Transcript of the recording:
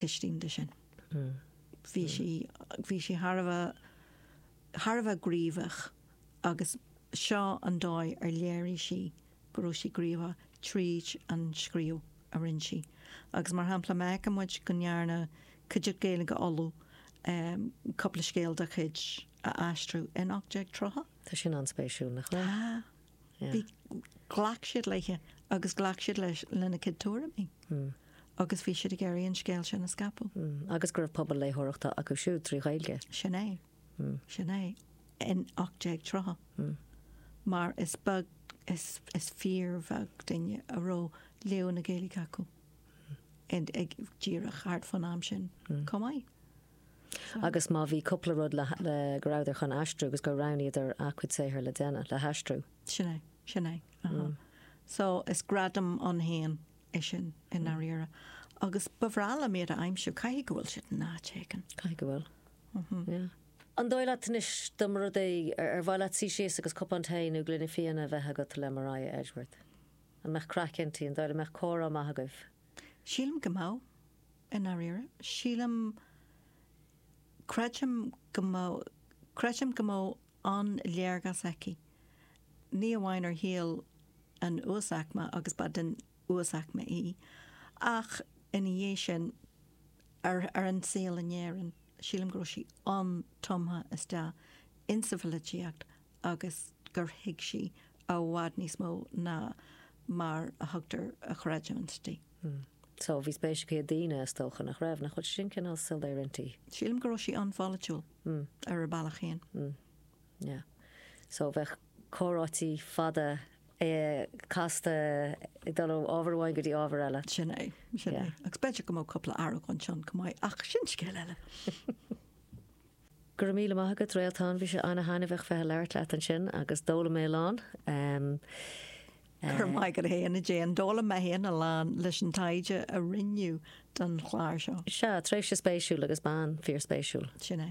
Istigh de sin bhí sí, bhí sí thar a bheith, thar a bheith gníomhach agus seo an dóigh ar léirigh sí go raibh sí gníomhach tríd an scríobh a rinne sí. Agus mar shampla má fheiceann muid go ndearna Cuideachta Gaeilge Uladh cúpla scéal dá cuid a aistriú in 1830, Tá sin an-spéisiúil nach raibh? Tá. Bhí, ghlac siad léi agus ghlac siad leis, lena cuid tuairimí agus bhí siad ag iarraidh an scéal sin a scaipeadh. Agus go raibh pobal léitheoireachta acu siúd trí Ghaeilge. Sin é. Sin é. In 1830, mar is beag is, is fíorbheag duine a raibh léamh na Gaeilge acu, ag, díreach thart fán am sin chomh maith. Agus má bhí cúpla rud le, le, go rabhadar chun aistriú agus gur roghnaíodar a' cuid saothair le déanamh, le haistriú. Sin é, sin é, ahá. So is gradam ann fhéin é sin i ndairíre. Agus ba bhreá liom iad a aimsiú, caithfidh go bhfuil siad in áit éigin. Caithfidh go bhfuil. Yeah. An dóigh leat anois dá mba rud é, ar, ar mhaith leat suí síos agus cupán tae nó gloine fíona a bheith agat le Maria Edgeworth? An mbeadh craic inti? An dóigh leat an mbeadh comhrá maith agaibh? Sílim go mbeadh. I ndairíre? Sílim, creidim go mbeadh, creidim go mbeadh an-léargas aici, ní amháin ar shaol an uasaicme agus ba den uasaicme í, ach ina dhiaidh sin ar, ar an saol in Éirinn. Sílim go raibh sí an-tumtha isteach insa pholaitíocht agus gur thuig sí i bhfad níos mó ná mar a thugtar a chreidiúint di. So, bhí spéis aici i daoine, is dócha, nach raibh? Nach bhfuil sin cineál soiléir ann? Sílim go raibh sí an-pholaitiúil ar a bealach féin. Yeah. So bheadh comhráití fada casta ag dul ó ábhar amháin go dtí ábhar eile. Sin é, sin é. Agus b'fhéidir go mbeadh cúpla argóint ann chomh maith ach sin scéal eile. Go raibh míle maith agat Réaltán, bhí sé an-taitneamhach bheith ag labhairt leat ansin agus d'fhoghlaim mé a lán. Go raibh maith agat féin a Éadaoin. D'fhoghlaim mé féin a lán leis an taighde a rinneadh don chlár seo. Sea, tréimhse spéisiúil agus bean fíor-spéisiúil. Sin é.